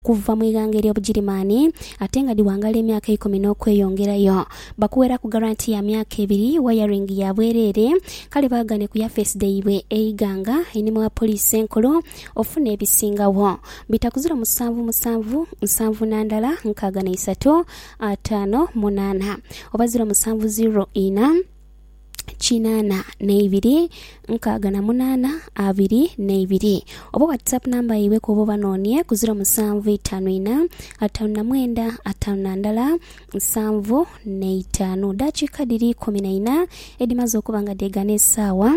kuva mu ighanga ery'Obugirimaani ate nga dhiwangala emyaka eikumi n'okweyongerayo. Bakuweraku garanti ya myaka ebiri, wayaringi ya bwereere, kale baghane ku yafeesi dhaibwe eighanga, einhuma wa poliisi enkulu, ofune ebisingagho. Bitakuzira omusanvu musanvu, nsanvu na ndala, nkaaga na isatu, ataano, munaana. Oba ziro musanvu ziro ina. kinana neibiri nkaaga na munana abiri neibiri oba whatsapp namba yaibwe kwoba obanonie ku ziro musanvu itano ina atano na mwenda atano na ndala nsanvu neitano. Dakiika dhiri ikumi na ina edhimaze okuba nga dhegana esaawa.